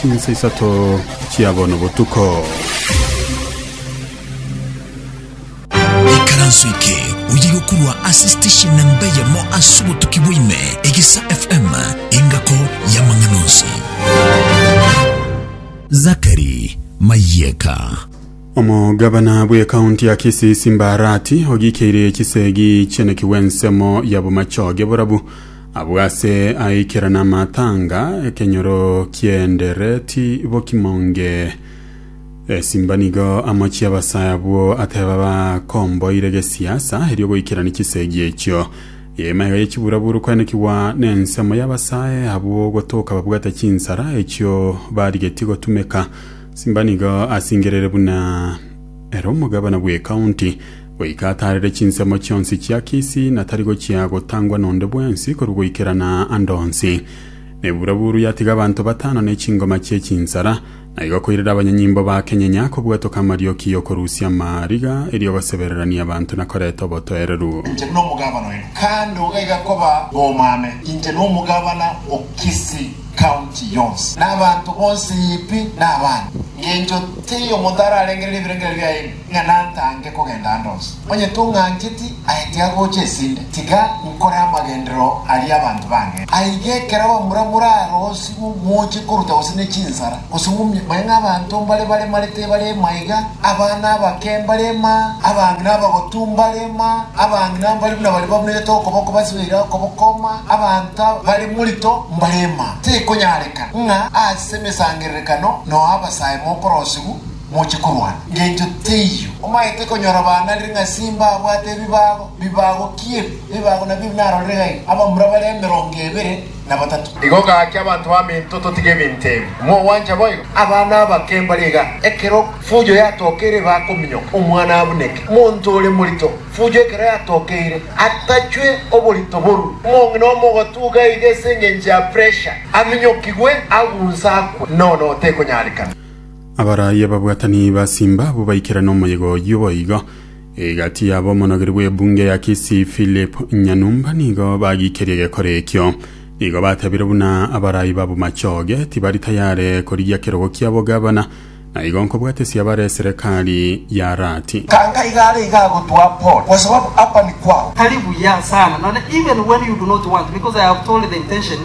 Chinsa isato chia bono botuko. Ikaranso eke oye gokurwa ase station na mbeyemo ase obotuki bwaime egesa FM engako y'amang'ana onsi. Zakari Mayeka. Omogabana bw'ekaunti ya Kisii Simba Arati ogiikeire chisegi chi'eneki bw'ensemo ya bomachoge borabu Abwo ase aikera namatanga, ekenyoro ki'endereti bokimonge. Esimba nigo amochie abasae abwo ateba bakomboire gesiasa erio goikerani chisegi echio. Yemaega ye chiburaburu koenekigwa nensemo y'abasae abwo gotoka babwate chinsara echio barigetie gotumeka. Simba nigo asingerere buna ere omogabana bw'ekaunti. Goika ataarere chinsemo chionsi chia Kisi, na tari gochia gotangwa nonde bwensi korwa goikerana ande onsi. Nebuuraburu yatiga abanto batano ne chingoma chie chinsara, na igo koirera abanyanyimbo ba kenyenya kobwatoka amarioki y'okorusia amariga, erio gosebererania abanto na koreta obotoereru. Inche buna omogabana oino kande iga igakoba omame, inche nomogabana o Kisi County yonsi, na abanto bonsi pi na abana, ngencho teiyo omonto ararengerere ebirengererio biaino. ng'a nantange kogenda ande onsi, onye tong'ancheti aete agocha esinde, tiga nkore amagenderero aria abanto bange. Aye iga ekero abamura morarosigwe moche koruta gose ne chinsara, gose momie, bae ng'a abanto mbare baremare tebare ema iga, abana abake mbare ema, abang'ina abagotu mbare ema, abang'ina mbari buna baria babunerete okoboko basibeire okoboko ema, abanto bare morito mbare ema. Tikonyareka ng'a ase emesangererekano noe abasae mokorosigwa, moche korwana, ngencho teiyo. Omaete konyora baana ring'a simba abwate ebibago, bibago ki ebi? Ebibago nabio ebi narorire gaiga, abamura bare emerongo ebere na batato. Igo gaki abanto baminto totige ebinto ebi, mogwancha boigo? Abana abake mbare iga, ekero fujo yatokeire bakominyoka, omwana abuneke. Monto ore morito, fujo ekero yatokeire, atachwe oborito borwe. Omong'ina omogotuga iga ase engencho ya pressure, aminyokigwe, agunse akwe, nono tekonyarekana. Abaraaia babwatani basimba abwo baikera nomoyega oyio boigo. Egati yabo omonogeri bw'ebunge ya Kisii Philip Nyanumba nigo bagiikerie egekora ekio. Nigo batebire buna abaraai babo machoge tibari tayare korigia kerogo kia bogavana na igo nkobwate siabare eserekari ya Rati. Tanga iga are iga agotwaa Paul kwa sababu hapa ni kwao. Tari buya sana none even when you do not want because I have told the intention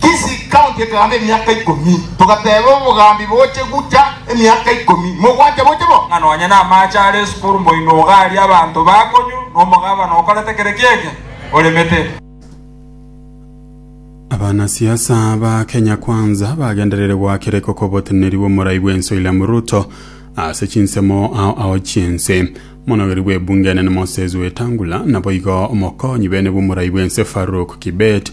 Kisii County ekegaamba emiaka ikomi, togateeba obogaambi boche gucha emiaka ikomi, mogwancha boche bo. Ng'a nonya namaache are esukuru mboino ogaaria abanto bakonyu na omogabana okorete kere kiege oremete. Abanasiasa ba Kenya Kwanza bagendereire goakera ekoko oboteneneri bw'omorai bw'ense William Ruto ase chinsemo ao ao chi'ense. Omonogeri bw'ebunge enene Moses Wetangula naboigo omokonyi bene bw'omorai bw'ense Farouk Kibet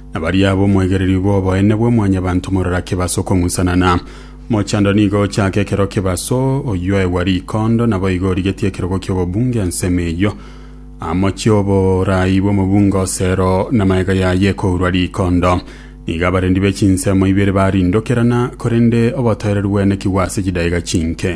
na baria ab'omwegereri bw'oboene bwa Mwanyabanto morora kebaso okong'usanana. Mochando nigo ochake ekero kebaso oyoegwa rikondo, naboigo origetie ekerogo ki'obobunge ensemo eyio. Amochie oboraai bw'omobunge osero, na magega yaye ekourwa rikondo. Nigo abarendi be chinsemo ibere barindokerana, korende obotoereru bwenekigwe ase chidaega chinke.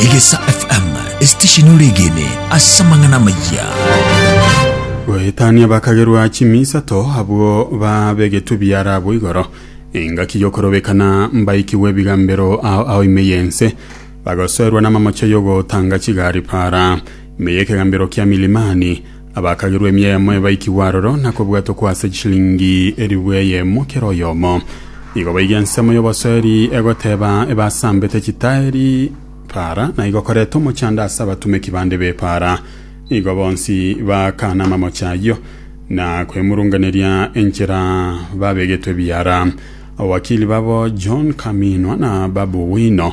Egesa FM esitesheni ore egene ase amang'ana amayia. goetania bakagerwa chimi isato abwo babegetwe biara abwo igoro engaki yokorobekana mbaikigwe ebigambero ao ao ime yense bagosoerwa namamocha yogotanga chigari para Ime y'ekegambero kia Milimani, abakagerwa emia eyemo ebaikigwe aroro, na kobwatwa kwa ase chishilingi elifu eyemo kera oyomo. Igo baiga ensemo y'obosoeri egoteeba ebasambete chitaeri Para, na igokoreta omochando ase abatumeki bande b'Epara. Igo bonsi baakana amamoche ayio, na kwemurunganeria enchera babegetwe ebiara. Abawakili babo John Kaminwa na Babu Wino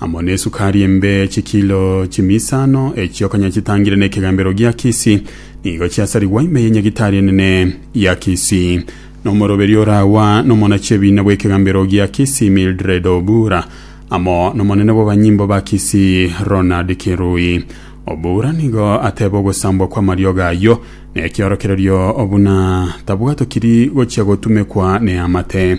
amo nesukari embe chikilo chimisano, echio konya chitangire nekegambero gia Kisi, nigo chiasarigwa ime yenyagitari enene ya Kisi. Nomoroberio orawa nomonachie ebiina bwekegambero gia Kisi Mildred Obura, amo nomonene bwabanyimbo ba Kisi Ronald Kirui. Obura nigo ateba ogosambwa kwamariogo ayio nekiorokererio buna tabwatokiri gochia gotumekwa neamate.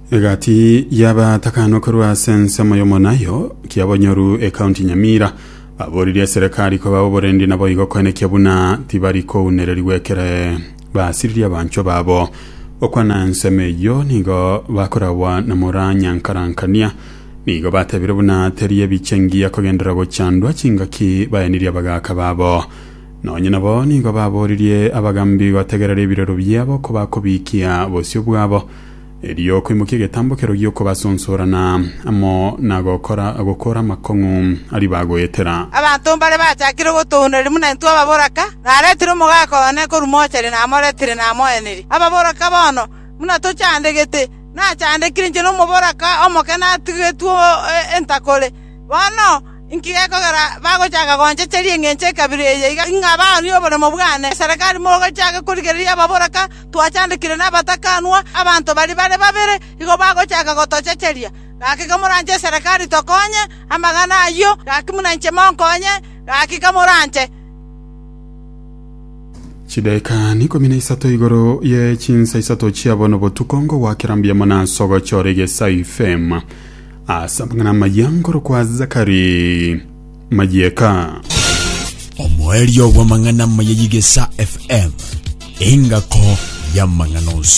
Egati y'abatakano korwa ase ensemo y'omonayo Kiabonyoru ekaunti Nyamira aboririe eserekari koba oborendi naboigo koenekia buna tibari kounererigwa ekere basiririe abanchwa babo. Okwana ensemo eyio nigo bakoragwa na mora Nyankarankania nigo batebire buna teri ebiche ngiya kogenderera gochandwa chingaki baenirie abagaaka babo. Nonye nabo nigo baboririe abagambi gotegerera ebirero biabo kobakobikia bosio bwabo Erio okoimokia egetambokero gi'okobasoonsorana amo na gokora gokora amakong'u aria bagoetera. Abanto mbare bachakire ogotoondereria buna intwe ababoraka, naretire omogaka one korwa mochari namoretire namoeneria. Ababoraka bono, buna tochandegete, nachandekire inche nomoboraka omoke natigetwe entakore. Bono inki gekogera bagochaka gonchecheria engencho ekabira eye iga ng'a baanie oboremo bwane? Eserekari mogochake korigereria ababoraka? twachandekire nabatakanwa, abanto baria bare babere nigo bagochaka gotochecheria. Gaki kamoranche eserekari tokonye amang'ana ayio, gaki buna inche monkonye, gaki kamoranche.” Chidaeka ikomi na isato igoro ye chinsa isato chia bono botuko ngogwakera mbiamo na ase ogochora egesaifema ase amang'ana amaya nkorokwa Zakari. mayieka. Omoerio bw'amang'ana amaya y'Igesa FM, engako y'amang'ana onsi.